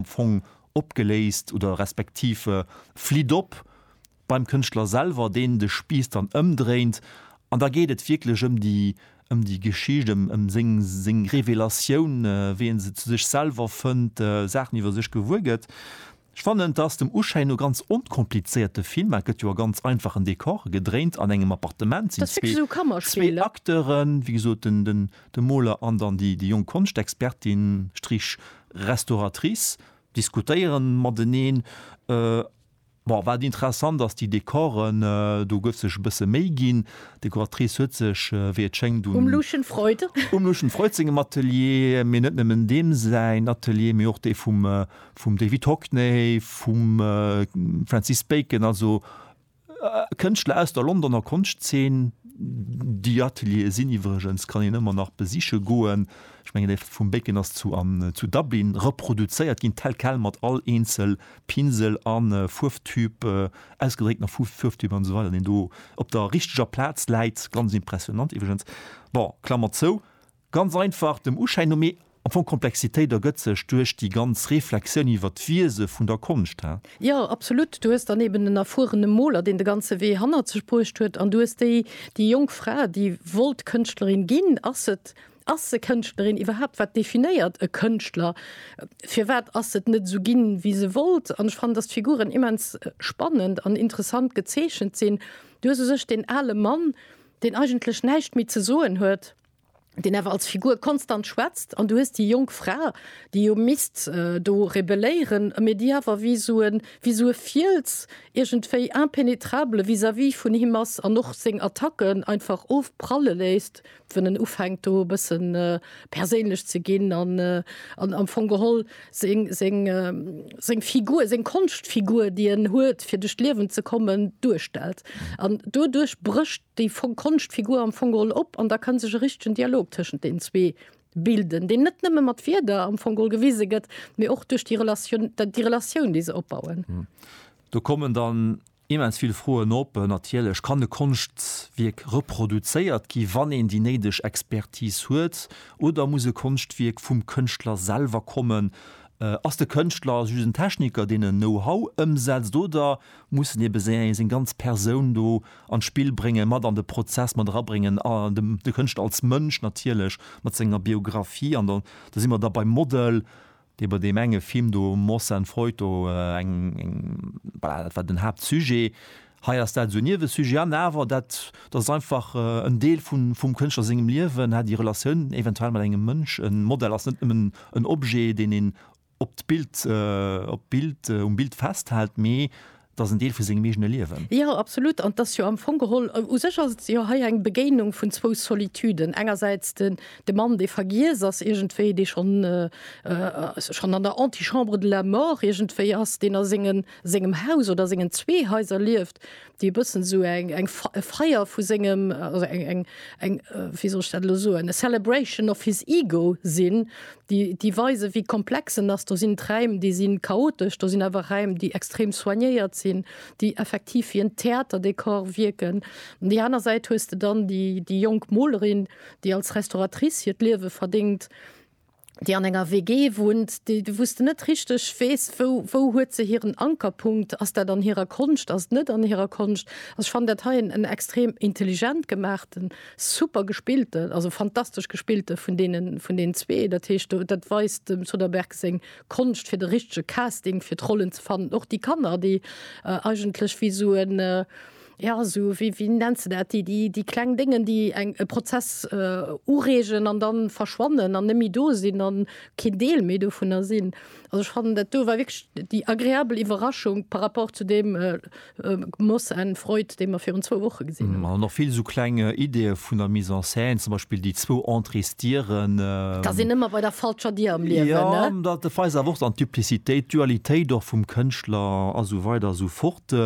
am Fong opgeléist oder respektiv flitt op beim Kënschtler selwer, deen de Spiiss dann ëmdréint. An da geet et wierklech ëm déi, ëm déi Geschicht, ëm, ëm seng, seng Revelatioun, wéi e se zu sech selwer fënnt, Saachen iwwer sech gewuer gëtt. Ech fannen, et ass dem Uschäin no ganz onkomplizéiert, de Film, et gëtt jo a ganz einfachen Decoren gedréint, an engem Appartement sinn zwee, zwee Acteuren, wéi gesot, den, den, De Moler an dann déi jonk Konschtexpertin, Strich, Restauratrice diskutéieren mateneen. Bon, wat interessant ass, déi Dekoren, do gouf sech e bësse Méi ginn. D'Dekoratrice huet sech, wéi et schéngt, un. Um Lucien Freud. Um Lucien Freud sengem Atelier, mee net nëmmen deem säin Atelier, mee och dee vum David Hockney, vum Francis Bacon, also Kënschtler aus der Londoner Konschtzeen, déi Ateliere sinn iwwregens, kann een ëmmer nach besiche goen, ech mengen dee vum Bacon ass zu an zu Dublin reproduzéiert ginn, tel quel, mat all eenzel Pinsel a Fuerwtüb, ausgedréckt nach Fuerwtüb an esou weider, deen do op der richteger Plaz läit, ganz impressionant iwwregens. Bon, Klammer zou. Ganz einfach, dem Uschäin no, mee am Fong d'Komplexitéit ergëtt sech duerch déi ganz Reflexioun iwwer d'Wiese vun der Konscht, he? Jo, absolut. Du hues dann eben en erfuerene Moler, deen de ganze Wee hannert sech bruecht huet, an du hues déi, déi jonk Fra, déi wollt Kënschtlerin ginn. Ass se, ass se Kënschtlerin iwwerhaapt? Wat definéiert e Kënschtler? Firwat ass se net esou ginn, wéi se wollt? An ech fannen, dass d'Figuren immens spannend an interessant gezeechent sinn. Du hues u sech deen ale Mann, deen eigentlech näischt méi ze soen huet, deen awer als Figur konstant schwätzt, an du hues déi jonk Fra, déi jo misst do rebelléieren, mee déi awer wéi esou e, wéi esou e Fiels iergendwéi impenetrable vis-à-vis vun him ass an och seng Attacken einfach ofpralle léisst, wann en ufänkt do e bësse perséinlech ze ginn an am Fong geholl seng Figur, seng Konschtfigur, déi en huet fir duerch d'Liewen ze kommen, duerstellt. An doduerch brécht Déi konscht Figur am Fong geholl op an da kann sech e richtegen Dialog tëschent den zwee bilden, deen net nëmme mat Wierder am Fong geholl gewise gëtt, mee och duerch déi Relatioun, déi Relatioun, déi se opbauen. Do kommen dann immens vill Froen op. Natierlech, kann e Konschtwierk reproduzéiert gi wann een déi néideg Expertise huet oder muss e Konschtwierk vum Kënschtler selwer kommen? Ass de Kënschtler just en Techniker, deen en Know-how ëmsetzt oder mussen ebe seng ganz Persoun do an d'Spill bréngen, mat an de Prozess mat erabréngen a dem, de Kënschtler als Mënsch natierlech mat senger Biografie. An dann, da si mer da beim Model, dee bei deem enge Film do, Moss and Freud, do eng, eng, voilà, dat war den Haaptsujet. Hei ass dat esou e Niewesujet an awer dat, dat ass einfach en Deel vu, vum Kënschtler sengem Liewen, hat déi Relatioun eventuell mat engem Mënsch. E Model ass net nëmmen en Objet, deen een op d'Bild, op d'Bild, um Bild festhält, mee et ass en Deel vu sengem eegene Liewen. Jo, absolut. An et ass jo am Fong geholl, u sech ass et jo hei eng Begéinung vun zwou Solituden. Engersäits de Mann, dee vergiess ass iergendwéi, dee schonn, schonn an der Antichambre de la mort iergendwéi ass, deen a sengen, sengem Haus oder sengen zwee Haiser lieft, déi e bëssen esou eng eng e Feier vu sengem also eng eng eng wéi soll ech dat elo soen e Celebration of his Ego sinn, déi déi weise wéi komplex en ass. Do sinn d'Räim, déi si chaotesch, do sinn awer Räim, déi extrem soignéiert sinn, déi effektiv wéi en Theaterdekor wierken. An déi aner Säit hues de dann déi déi jonk Molerin, déi als Restauratrice hiert Liewe verdéngt, déi an enger WG wunnt, déi wou s de net richteg weess, wou wou huet se hiren Ankerpunkt, ass dat an hirer Konscht, ass et net an hirer Konscht? Also ech fannen dat hei en en extrem intelligent gemaachten, super gespillte, also fantastesch gespillte vun deene vun deenen zwee. Dat heescht do dat weist dem Soderbergh seng Konscht fir de richtege Casting fir d'Rollen ze fannen. Och déi Kanner, déi eigentlech wéi esou en. Jo, esou wéi, wéi nenns de dat, déi, déi kleng Déngen, déi eng, e Prozess ureegen an da verschwannen an net méi do sinn an keen Deel méi dovunner sinn. Also ech fannen, dat do war wierklech déi agreabel Iwwerraschung par rapport zu deem Moss and Freud, dee mer virun zwou Woche gesinn hunn. An och vill esou kleng Ideeë vun der Mise en scène, zum Beispill déi zwou Entrée's, Dieren. T'ass een ëmmer bei der falscher Dier am Liewen, ne? Jo, dat weist awer och dann d'Duplicitéit, d'Dualitéit och vum Kënschtler a sou weider a sou fort.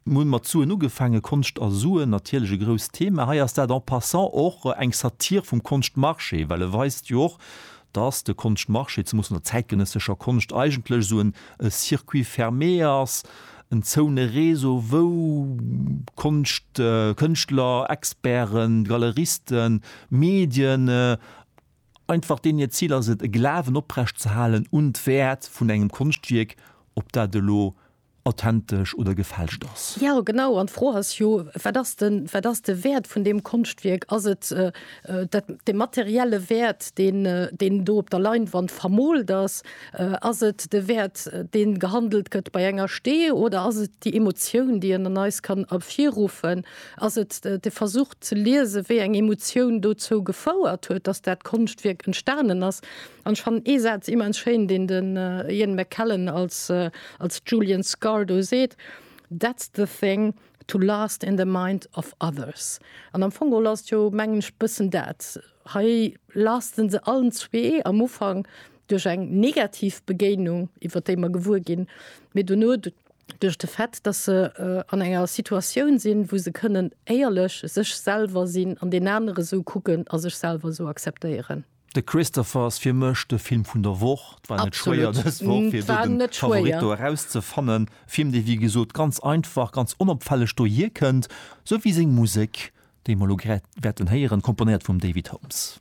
Mir hunn mat Suen ugefaangen, Konscht a Suen, natierlech e grousst Thema. Hei ass dat en passant och eng Satire vum Konschtmarché, well e weist jo och, dass de Konschtmarché, zemoos an der zäitgenëssescher Konscht, eigentlech esou en circuit fermé ass, en zoune Réseau, wou Konscht, Kënschtler, Experten, Galeristen, Medien, einfach deenen hiert Zil ass et, e Glawen oprecht ze halen un d'Wäert vun engem Konschtwierk, ob dat elo authentesch oder gefälscht ass. Jo, genau. An d'Fro ass jo, Wat ass de, wat ass de Wäert vun deem Konschtwierk? Ass et dat, de materielle Wäert, deen, deen do op der Leinwand vermoolt ass? Ass et de Wäert, deen gehandelt gëtt bei enger Stee? Oder ass et déi Emotioun, déi en an eis kann ervirruffen? Ass et de Versuch ze liesen, wéi eng Emotioun dozou gefouert huet, dass dat Konschtwierk entstanen ass? An ech fannen ee Saz immens schéin, deen de Ian McKellen als als Julian Scarr do seet, That's the thing, to last in the mind of others. An am Fong geholl ass et jo, mengen ech, bëssen dat. Hei lasten se allen zwee am Ufank duerch eng negativ Begéinung, iwwer déi mer gewuer ginn, mee dono duerch de Fait, datt se an enger Situatioun sinn, wou se kënnen éierlech sech selwer sinn an deen anere sou kucken a sech selwer sou akzeptéieren. De Christopher ass fir mech de Film vun der Woch. Et war net schwéier dës Woch fir do den Favorit do eraus ze fannen. E Film dee wéi gesot ganz einfach, ganz onopfälleg do hier kënnt, sou wéi seng Musek déi mer elo grad wäerten héieren, komponéiert vum David Holmes.